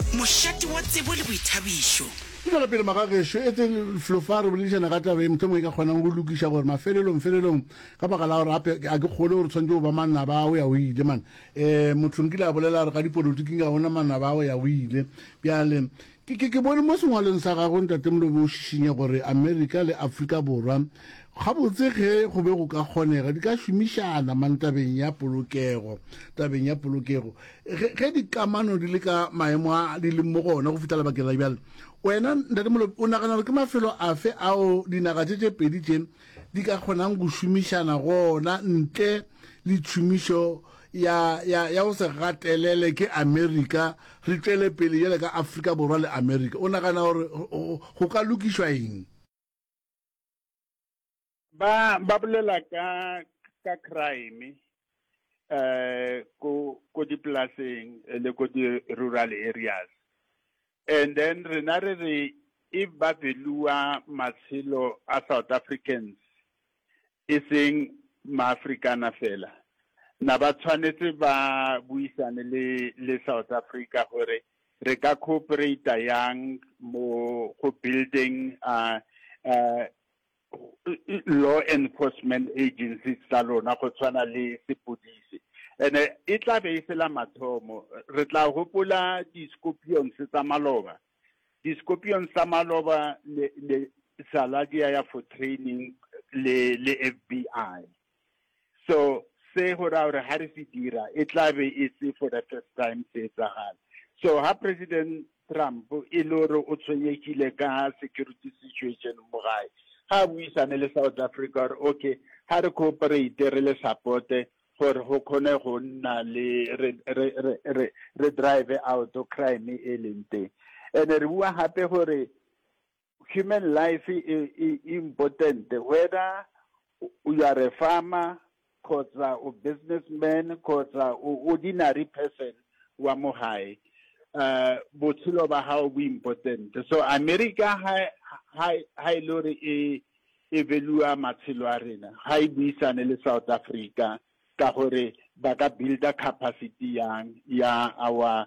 Mošate wa tsebo le boithabišo. Ke tšwela pele magagešo, etseng flo fa re boledišana ka taba e mohlomong e ka kgonang go lokiša gore mafelelong felelong, ka baka la gore gape a ke kgole gore tshwanetse go ba manaba a o ya o ile man. E, motho nkile a bolela gore ka dipolotiking ga gona manaba a o ya o ile. Bjale, ke, ke, ke bone mo sengwalong sa gago, Ntate Molobe, o šišinya gore Amerika le Afrika Borwa, gabotse ge go be go ka kgonega, di ka šomišana man tabeng ya polokego, tabeng ya polokego. ge, ge dikamano di le ka maemo a di leng mo go ona go fihla lebakeng la bjale wena ntate molope o nagana gore ke mafelo afe ao dinaga tše tše pedi tše di ka kgonang go šomišana gona ntle le tšhomišo ya ya ya go se gatelele ke america re tšwele pele jale ka afrika borwa le america o nagana gore go ka lokišwa eng ba ba bolela ka, ka kuraene, ko, ko dipolaseng le ko di rural areas, and then rena re re e ba beliwa matshelo a South Africans, e seng ma Afrikaner fela, na ba tshwanetse ba buisane le, le South Africa gore re ka cooperate-a yang mo go building . law enforcement agencies tsa lona go tshwana le sepodisi and e tla be e se la mathomo re tla gopola di-scorpions tsa maloba di-scorpions tsa maloba le, le saladia ya for training le, le FBI so se go ra gore ha re se dira e tla be e se for the first time se etsagala so ha president Trump e le gore o tshwenyegile ka security situation mo gae ga a buisane le South Africa gore okay ha re cooperate re le supporte gore go kgone go nna le re drive out crime e leng teng and re bua gape gore Human life e e important whether you are a farmer kgotsa o business man kgotsa o ordinary person wa mo gae uh botshelo ba gago bo important so America ha ha ha e le gore e e velua matshelo a rena ha e buisane le South Africa ka gore ba ka builder capacity yang ya our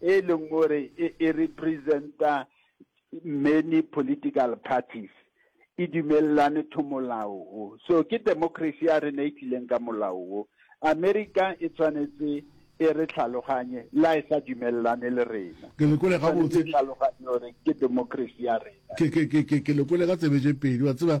e leng gore e, e representa many political parties e dumelelane to molao o so ke democracy ya rena e tlileng ka molao o america e tshwanetse e re tlhaloganye la e sa dumelelane le rena ke lekole ga botse tlhaloganye gore ke democracy ya rena ke ke ke ke ke lekole ga tsebe je pedi wa tseba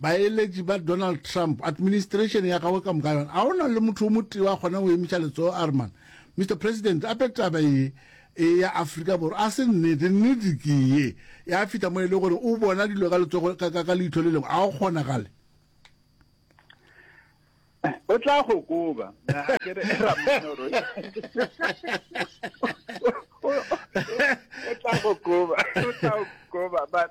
Baeletši ba Donald Trump, administration ya gagwe ka moka yona, a ona le motho o motee wa kgona go emiša letsogo a re, Man, Mister President, ape taba ye e ya Afrika Borwa a se nnete, nnete ke ye ya fihla mo e le gore o bona dilo ka letsogo ka, ka, ka leitho le lengwe, a go kgonagale. o tla go koba o tla go koba o tla go koba but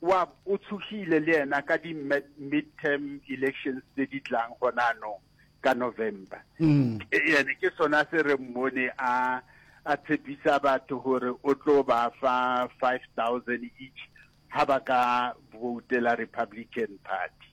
wa o tshogile le yena ka di midterm elections tse di tlang gona anong ka November mm. ene ke sona se re mmone a a tshepisa batho gore o tlo ba fa 5000 each ha ba ka voutela Republican Party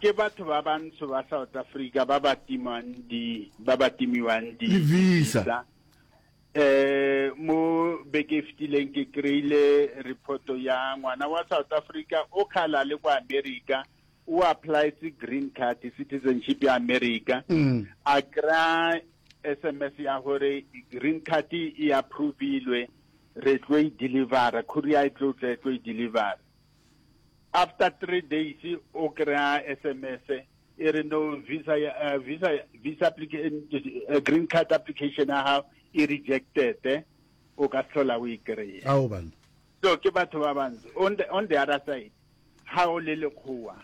Ke batho ba bantsho ba South Africa ba ba timwang di ba ba timiwang di visa. Eh mo beke e fetileng ke kreile report ya ngwana wa South Africa o khala le kwa America o applies green card citizenship ya America mm. a kra SMS ya gore green card e approvilwe re tlo e deliver courier e tlo tla e tlo e deliver After three days o kry-a SMS e re no visa uh, visa visa application uh, green card application ya gago e rejected o ka tlhola o e kry-e so ke batho ba bantsi on the, on the other side ga o le lekgowa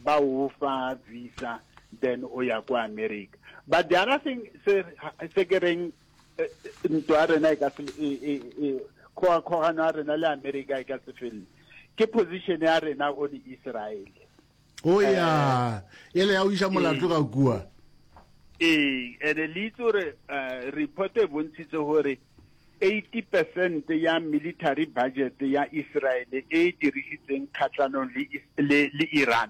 ba o fa visa then o ya kwa america but the other thing se ke reng Eh, eh, ntwa ya rena e ka se e, e, e, kgogakgogano ya rena le america e ka se felele ke position ya rena o le israel o ya e le ya o iša molato ga kua ee ene le itse gore eh, report e bontshitse gore 80 percent ya military budget ya israel e e dirisitseng kgatlhanong le Is- le le iran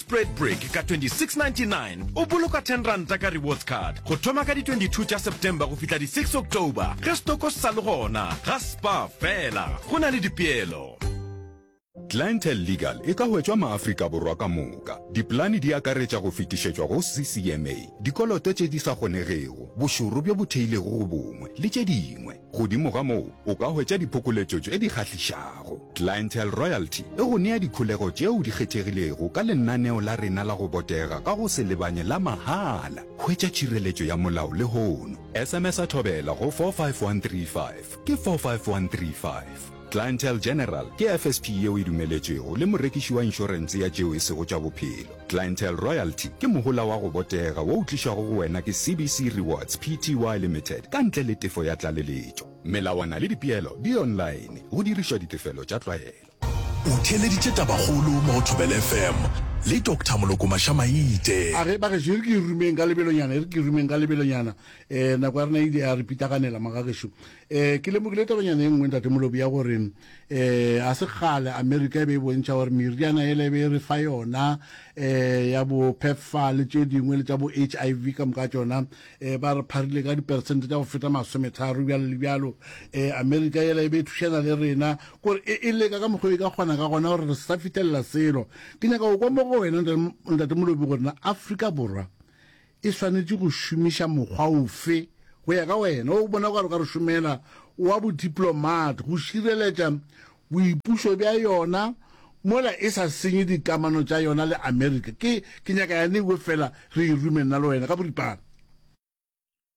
Spread Break ka 2699 o boloka 10 ranta ka rewards card go thoma ka di 22 tša September go fihla di 6 October ge stoko se sa le gona ga spa fela go na le dipeelo. Clientele Legal e ka hwetšwa maAfrika Borwa ka moka. Dipolane di akaretša go fetišetšwa go CCMA, dikoloto tše di sa kgonegego, bošoro bjo bo theilego go bongwe, le tše dingwe. Godimo ga moo, o ka hwetša diphokoletšo tše di kgahlišago. Clientele Royalty e go nea dikholego tšeo di kgethegilego ka lenaneo la rena la go botega ka go se lebanye la mahala. Hwetša tšhireletšo ya molao lehono. SMS-a Thobela go 45135, ke 45135. Clientele General ke FSP yeo e dumeletšwego le morekiši wa inšorense ya tšeo e sego tša bophelo. Clientele Royalty ke mohola wa go botega wo o tlišwago go wena ke CBC Rewards Pty Limited ka ntle le tefo ya tlaleletšo. Melawana le dipeelo di online, go dirišwa ditefelo tša tlwaelo. O theeleditše tabakgolo mo go Thobela FM le Doctor Moloko Mašamaite. A re, Bagešo, e re ke e rumeng ka lebelonyana, e re ke e rumeng ka lebelonyana. Nako ya rena e ile ya re pitaganela, Magagešo. Ee, ke lemogile tabanyana e nngwe, Ntate Molobi, ya gore ee, ga se kgale Amerika e be e bontšha gore meriana yela e be e re fa yona ee, ya bo PEPFAR le tše dingwe le tša bo HIV ka moka tšona ee, ba re pharile ka diperesente tša go feta masometharo bjalo le bjalo. Ee, Amerika yela e be e thušana le rena kore e, e leka ka mokgwa e ka kgona ka gona gore re se sa fitlhelela selo. Ke nyaka go kwa mo go wena, Ntate Molobi, gore na Afrika Borwa e swanetše go šomiša mokgwa ofe, go ya ka wena, wo o bonago gare ga go šomela wa bodiplomate go šireletša boipušo bja yona mola e sa senye dikamano tša yona le Amerika? Ke, ke nyaka yane e wefela re e rume nna le wena ka boripana.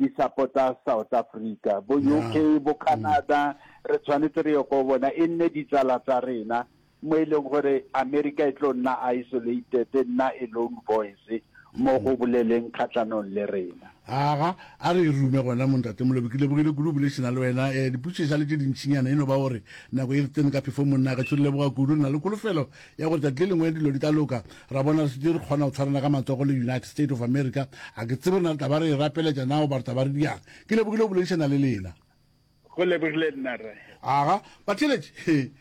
di sapota South Africa, bo UK, bo Canada, re tshwanetse re ye ko bona, e nne ditsala tsa rena, mo e leng gore America e tlo nna isolated, e nna a lone voice mo go boleleng kgatlanong le rena. Aga, a re e rume gona mo Ntate Molobi, ke lebogile kudu go boledišana le wena, eh, diputsho e sa le tše dintšinyana, e no ba gore nako e re tsene ka phefong monna, gešo re leboga kudu, re na le kholofelo ya gore tšatši le lengwe dilo di tla loka, ra bona re šetše re kgona go tshwarana ka matsogo le United State of America. A ke tsebe rena re tla ba re e rapeletša na goba re tla ba re diang. Ke lebogile go boledišana le lena. Go lebogile nna, Rre. Aga, batheeletši, he,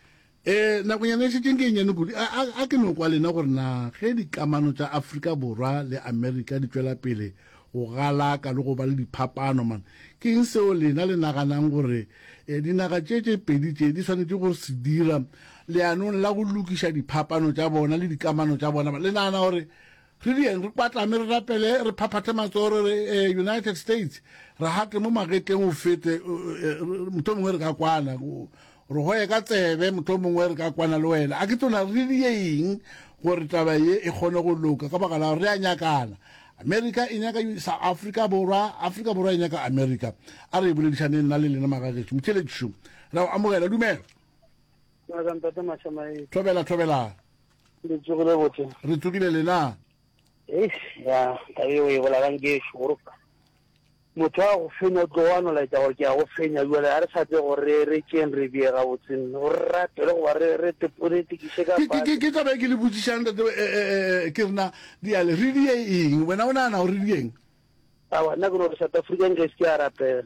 e, nakonyana e šetšeng ke e nnyane kudu. A, a, a ke no kwa lena gore na ge dikamano tša Afrika Borwa le America di tšwela pele, Go galaka le go ba le diphapano, man. Ke eng seo lena le naganang gore dinaga tše tše pedi tše di swanetše go se dira leanong la go lokiša diphapano tša bona le dikamano tša bona? Le nagana gore re dieng, re kwatlame, re rapele, re phaphathe matsogo, re re, E, United States, re gate mo magetleng o fete, mohlomongwe re ka kwana. Re go ye ka tsebe, mohlomongwe re ka kwana le wena. A ke tona re di ye eng gore taba ye e kgone go loka, ka baka la gore re a nyakana. Amerika e nyaka South Africa Borwa, Afrika Borwa e nyaka Amerika. A re e boledišaneng nna le lena magagetšo. Motheeletši šo, re a go amogela, dumela. Thobela, thobela. Re tsogile lena. ya taba eo e bolalang ke šoro motho a go fenya o tlo wa nolaetsa gore ke ya go fenya jale ga re sa tse gore re re tšeng re bee ga botseng go re ratele goba re tekiše ka ke taba e ke le botsišang tate eh, eh, eh, ke rena diale re die eng wena o nagana gore re dieng awa nna ke no re south african ke se ke a rapela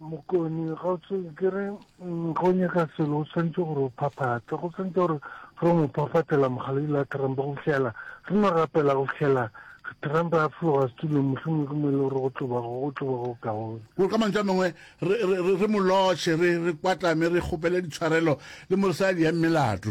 Mokoni, Kgaotšo, ke re ge o nyaka selo o tshwanetse gore o phaphathe, go tshwanetse gore re o mo phafatela mogaledilo a Trump go fihlela re no rapela go fihlela Trump a fologa setulong mohlomong ke mo e le gore go tloba go tloba go kaone. Gore ka mantšu a mangwe re, re, re, re mo lotšhe, re, re kwatame, re kgopele ditshwarelo le mo re sa ya diyang melato.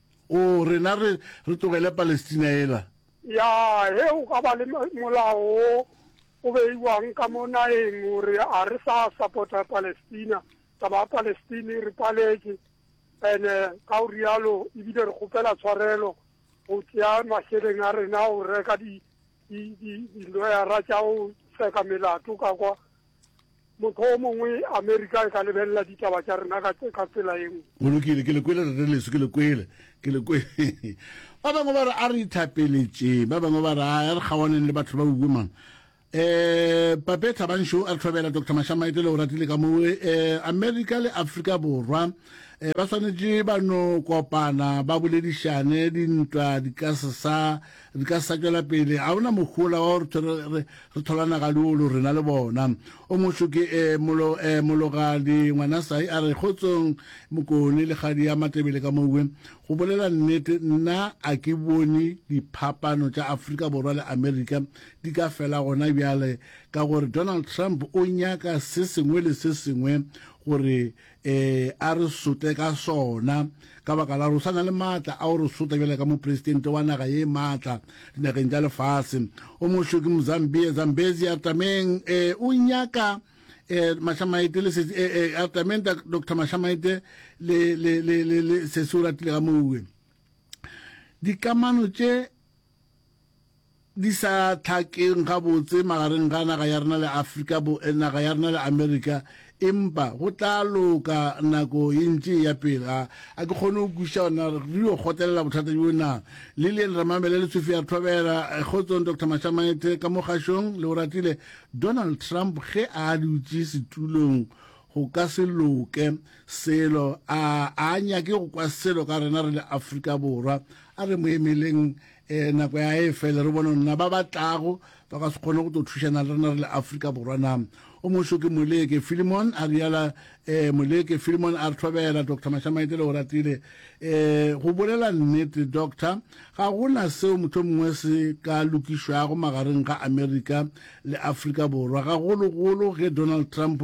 O, rena re, re tlogele Palestina yela. Ya, ge go ka ba le molao wo o beiwang ka mo nageng gore a re sa sapota Palestina, taba ya Palestine re paletše, ene ka go rialo ebile re kgopela tshwarelo go tšea mašeleng a rena go reka di, di, di, diloyara tša go seka melato ka kwa, Mokgwa o mongwe Amerika e ka lebelela ditaba tša rena ka, ka tsela e nngwe. Go lokile, ke le kwele rre leso, ke le kwele, ke le kwele. Ba bangwe ba re a re ithapeletšeng, ba bangwe ba re a re kgawaneng le batho ba uwe mang. Eh, Pape Thabanxo a re tlhobela Doctor Mashamaete le Oratile ka mo eh, Amerika le Afrika Borwa eh, ba swanetše ba no kopana ba boledišane dintwa di ka se sa Di ka sa tšwela pele. Ga go na mohola wa gore thore re, re thola nagaliolo rena le bona. O moso ke e, molo, e, mologadi, ngwanasai a re, Kgotsong, Mokone, le kgadi ya Matebele ka mowe. Go bolela nnete, nna a ke bone diphapano tša Afrika Borwa le Amerika di ka fela gona bjale, ka gore Donald Trump o nyaka se sengwe le se sengwe gore Ee, a re sote ka sona, ka baka la gore o sa na le maatla a go re sota bjale ka mopresidente wa naga ye maatla dinageng tša lefase. O mošo ke Mozambia, Zambezi, Artameng. Ee, o nyaka eh Mashamaite le sesi eh eh Artameng Dr Mashamaite le le le le sesi o ratile ga mouwe dikamano tše di sa hlakeng gabotse magareng ga naga ya rena le Afrika bo, naga ya rena le Amerika, empa go tla loka nako ye ntši e ya pele. A, a ke kgone go kwešiša gore na re yo kgotelela bothata bjo na. Lillian Ramamela le Sophia re thobela. Kgotsong Doctor Mashamaethe ka mo kgašong, le o ratile. Donald Trump ge a dutše setulong go ka se loke selo, a a nyake go kwa selo ka rena re le Afrika Borwa. A re mo emeleng. e nako ya e fele re bone nna ba ba tlago ba ka se kgone go tlo thušana le rena re le afrika borwa na o moso ke moleke filimon a riala e moleke filimon a re thobela doctor mashamaite le o ratile e go bolela nnete doctor ga go na seo motho mongwe se ka lokišwago magareng ga amerika le afrika borwa gagologolo ge donald trump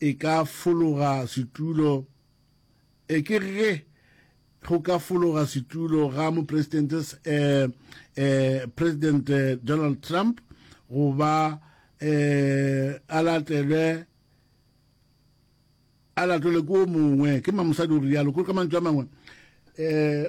e ka fologa setulo, e ke ge go ka fologa setulo ga mopresidente eh, eh, President eh, Donald Trump go ba eh, a latelwe a latelwe ko mongwe ke mamosadi o rialo ko ka mantšu a mangwe eh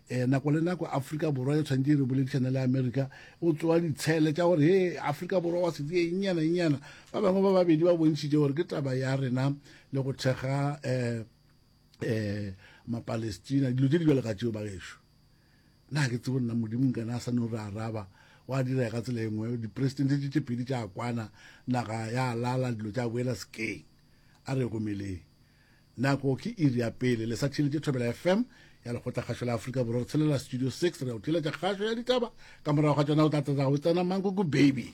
E, nako le nako Afrika Borwa e tshwanetse e re boledišane le Amerika o tsoa ditshele tša gore he Afrika Borwa wa setse e nnyana nnyana ba bangwe ba babedi ba bontšhitše gore ke taba ya rena le go thekga um um mapalestina dilo tse di bjale ka tšeo ba gešo na ke tsebo nna modimo nkana a sa no re araba wa dira ka tsela engwe dipresidente tše tše pedi tša kwana naga ya lala dilo tša boela sekeng a re gomeleng Nako ke iri ya pele. Le sa tšheletše Thobela FM ya Lekgotlakgašo la Afrika Borwa. Re tshelela Studio Six. Re ya o tšweletša kgašo ya ditaba. Ka morago ga tšona o tla tatago o tsena Mankuku Baby.